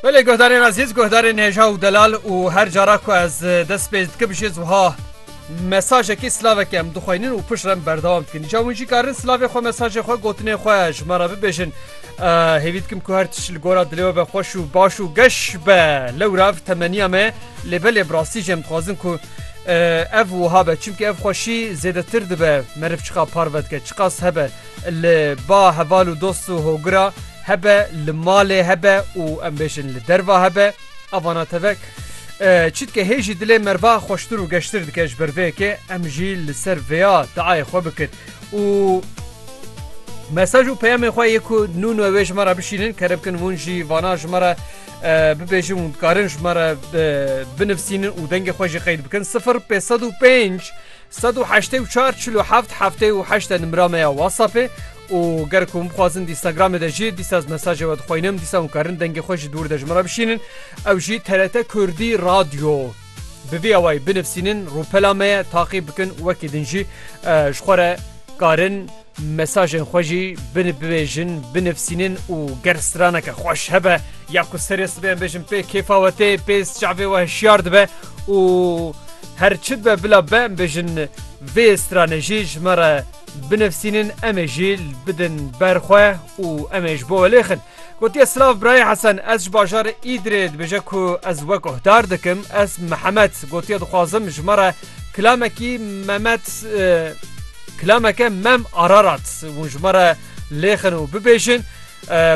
Belê guhdarên ezîz, guhdarên hêja û delal û her cara ku ez dest pê dikim jî ez wiha mesajekî silavekê em dixweynin û pişt re em berdewam dikin. Îca hûn jî karin silavê xwe, mesajê xwe, gotinên xwe ji me re bibêjin. Hêvî dikim ku her tişt li gora dilê we be xweş û baş û geş be. Lewra ev temeniya me lê belê bi rastî jî em dixwazin ku ev wiha be. Çimkî ev xweşî zêdetir dibe meriv çiqa parve dike, çiqas hebe. li ba heval û dost û hogira hebe, li malê hebe û em bêjin li derva hebe. A vana tevek çîtke hê jî dilê merva xweştir û geştir dike ji ber vê yekê em jî li ser vêya diayê xwe bikin û mesaj û peyamê xwe yê ku nû nû wê ji me re bişînin kere bikin hûn jî vana ji me re bibêjin û dikarin ji me re binivîsînin û dengê xwe jî qeyd bikin 0505 Sed û heştê û çar çil û heft heftê û heşt e nimra me ya WhatsAppê û ger ku hûn bixwazin Instagramê de jî dîsa ez mesajê we dixwînim dîsa hûn karin dengê xwe ji dûr de ji min re bişînin ew jî TRT Kurdî Radyo bi vî awayî binivîsînin rûpela me ye taqî bikin wekî din jî ji xwe re karin Mesajên xwe jî binibêjin, binivîsînin û ger straneke xweş hebe ya ku serê sibê em bêjin pê kêfa we tê, pê çavê we hişyar dibe û her çi dibe bila be em bêjin vê stranê jî ji me re binivîsînin em ê jî bidin ber xwe û em ê ji bo we lêxin. Gotiye silav birayê Hesen ez ji bajarê Îdirê dibêje ku ez we guhdar dikim ez Mihemed gotiye dixwazim ji me re kilamekî Memed kilameke mem Ararat hûn ji me re lêxin û bibêjin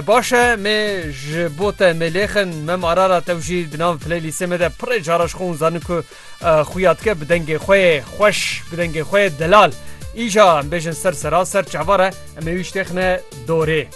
baş e mê ji bo te mê lêxin mem Ararat ew jî di nav playlîstê me de pirê cara ji xwe hûn zanin ku Xuya dike bi dengê xwe yê xweş, bi dengê xwe yê delal. Îja em bêjin ser sera ser çavar e, em ê wî şitêxine dorê.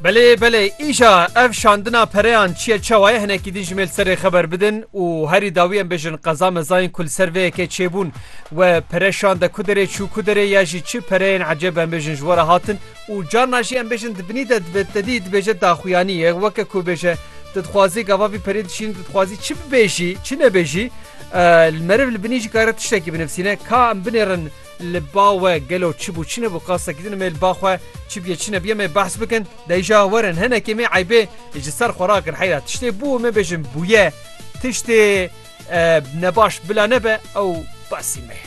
Belê belê îja ev şandina pereyan çiye çawa ye hinekî din ji me li ser rê xeber bidin û herî dawî em bêjin qeza meza yên ku li ser vê yekê çêbûn we pere şande ku derê çû ku derê ya jî çi pereyên ecêb em bêjin ji we re hatin û carna jî em bêjin di binî de dibe te dî dibêje daxuyanî ye weke ku bêje tu dixwazî gava vî perê dişînî tu dixwazî çi bibêjî çi nebêjî meriv li binî jî kare tiştekî binivîsîne ka em binêrin Li ba we gelo çi bû çi nebû qastekî din em ê li ba xwe çi bûye çi nebûye em ê behs bikin. Dayîşa werin hinekê me eybê ji ser xwe rakir heyra tiştê bû em ê bêjin bûye tiştê nebaş bila nebe ew basî me ye.